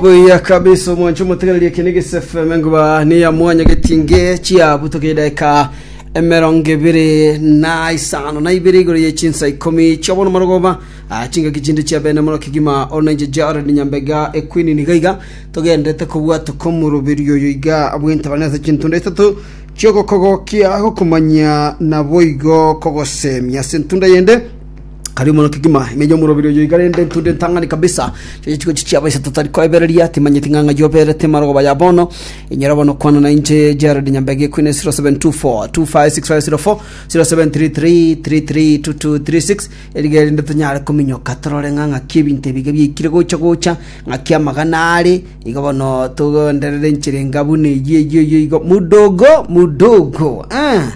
buya kabisa omwancho motegereri eke ne gisefeme nguba niya mwanya getinge chiabutoka edaika emerongo ebere na isano na ibere igoro ye chinsa ikomi chiabono marogoba ah, chingaki chinde chia bene mono kigima onainche jared nyambega ekwini niga iga togenderete kobwata komoroberio oyo iga bwentabana ase chintunda isato chiogokogokia gokomanya naboigo kogosemia ase entunda yende Kare mono kegima ime y'omorobiri oyo iga rende ntunde ntang'ani kabisa chiria chigochi chiabo isato tari koebereria timanyeti ng'a ng'ai oberete marogoba ya bono inyora bono kwana na inche Gerald Nyambegi ekwine 0724 256504 0733 332236 eriga erinde tonyare kominyoka torore ng'a ng'aki ebinto ebiga biaikire gocha gocha ng'aki amagana are iga bono togenderere enchera enga buna eyio eyio eyio igo mudogo mudogo ah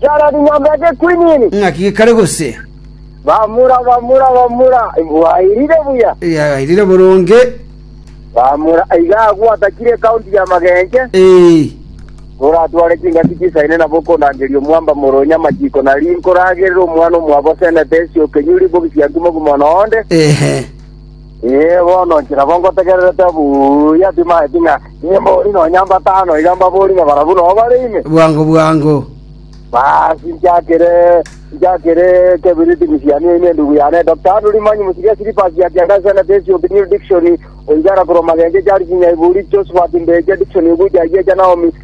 Chara chinyomba eke kwinini. Ng'aki gekare gose. Bamura, bamura, bamura. Bwairire buya. Yagairire boronge. Bamura iga agwo atakire ekaunti ya magenche. Ee. Oratware chingaki chisaine nabo okondangeria omwamba moronya amachiko na rinko ragerera omwana omwabo senete esioke nyuri bogi siankimo gimo nonde. Ehe. Inee! Bono inche nabo ngotegererete buya timaeti ng'a nimbori nonya mbatano iga mbabori ng'a barabwo nobo bare ime? Bwango bwango. Basi nchakire nchakire ekebiriti ng'isianie ime endubu yane. Dr. Andrew Limanyi mosibia Syllabus ya Kiangasi and Atensi of the New Dictionary, oigara korwa magencho Charles Nyaiburi, Josephat Mbeche, Dickson Ogucha Ayiacha, Naomi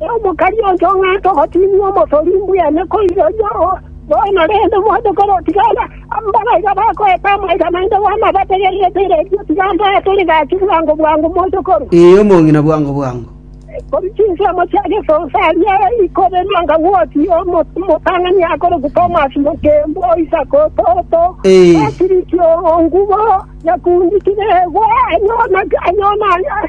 “Omokani oito ng'a togotinywa omosori mbwene koiroria oyomo bono, rende mwanche korotigana. Mbabare iga bakoeta amaiga naende bono abategererete eredio, tiga mbatore gaki bwango bwango moche korwa. Ee, omong'ina, bwango bwango. Korwa chinsemo chia gesonso aria ikobe nanga ng'osi omotang'ani akorokwa Tomasi Mokembu o Isiko toto, Patiriki o ngubo yekundikire egwa, anyona.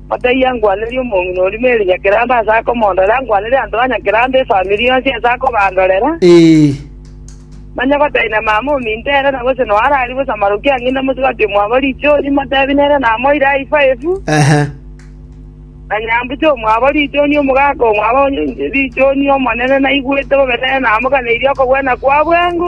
Otaiyo angwanere omong'ina oria Mary Nyakerambe ase akomondorera, angwanere abanto ba Nyakerambe efamiri yonsi ase akobandorera. Manya gotari na mama ominto ere na gose noa arari bosa maroki a ng'ina mosubati omwabo richoni, motebi nere namoire aye ifaefu, na nyambucha omwabo richoni, omogaka omwabo richoni, Omonene naigwete bobe nere namoganeirie okogwena kwa bwengo.